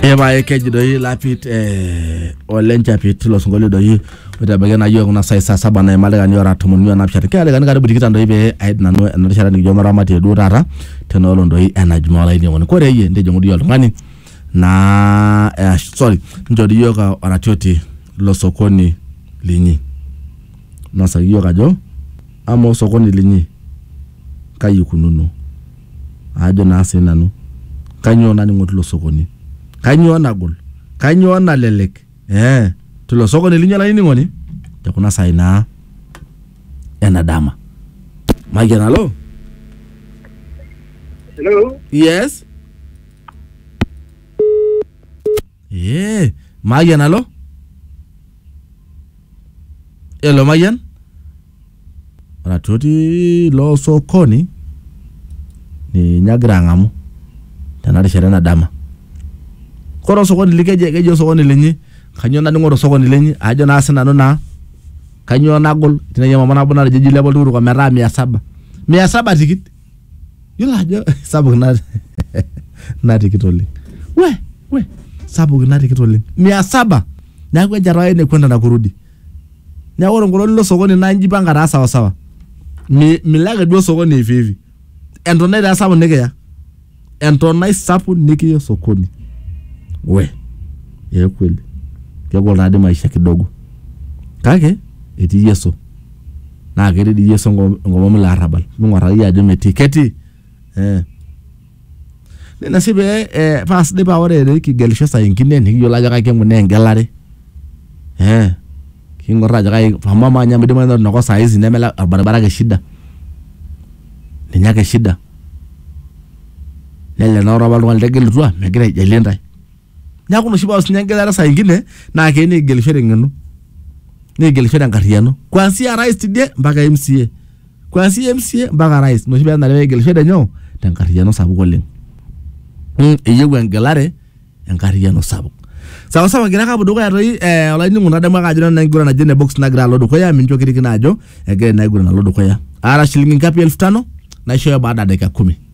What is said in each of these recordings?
Epae keji doi lapit eh, ole nchapit tilo sinkolio doi oitabaiki naa yiok kuna sai saa saba naima ildaikani ora tomon o naapishana keeta ildaikani karibu tikitam doi pee aid nanu ena rishata nikijo maramatie duo taata tena olong doi ena jumaa olainining'oni kore iyie ntijing'u doi oltung'ani naa eh, sorry nchori iyiok ah, oratioti lo sokoni linyi nosaki iyiok ajo amaa osokoni linyi kai ikununo ajo naa sii nanu kanyoo naning'o tilo sokoni kanyoo nagol kanyoo nalelek eh, tilo sokoni linyi olainining'oni te kuna saai naa ena dama mayian alo Hello. yes eh, mayian alo elo mayian ore atua otii ilo sokoni ninye agira ang'amu tena rishata ena dama. Kore osokoni li keji keji osokoni linyi kanyoo naning'o to osokoni linyi aajo naa sinanu naa kanyoo nagol tinai emama nabo natejo eji ilepa oltukutuk ometaa mia saba, mia saba tikit iyolo ajo sapuk ina ina tikit oleng'. Wee wee sapuk ina tikit oleng' mia saba neeku eja toi ene kwenda na kurudi. neeku ore enkolong nilo sokoni naa inji ipanga taa sawa sawa Mi- milo ake duo sokoni hivi hivi entonai taa sapuk nikiya entonai sapuk nikiya sokoni we ee kweli kegol taa dii maisha kidogo kake etii yeso naa ketii dii yeso enko- enkomom ilo arrabal ming'uarr akeyie ajo metii ketii eh. Nena sii pee eh, paa sidai paa ore pee kigelisho saa ingine nikiyiolo ajo kaji kinkunaa engelare eh, king'orr ajo kaji amu amaa ninye amu idimayu naa ore ina kop saa hizi neme ele orbaribara ake shida ninye ake shida nelelek naa ore apa oltung'ani litegelutua megira aijalie intae. Neaku ina oshi paa sinye engelare saa ingine naa keyieu nikigelisho teng'eno nikigelisho tenkarriyiano kuanzia rais tidie mpaka MCA kuanzia MCA mpaka rais ina oshi peenare pekigelisho tenyoo tenkarriyiano sapuk oleng mm, eyieu engelare enkarriyiano sapuk sawa sawa kigira ake apuo dukuya toi eh, olainining'oni nadamu ake ajo nanu enkiguran naje ene box nagira alo dukuya mincho kirikino ajo egira ina kiguran alo dukuya aata shilingi ngapi elfu tano naishooyo baada ya dakika kumi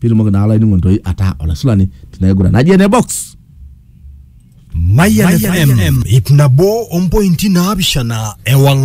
pitumoki naa olainining'oni toi ataa olaisulani tina kiguran naji ene box Mayan FM, ip nabo ompointi naapishana ewang'an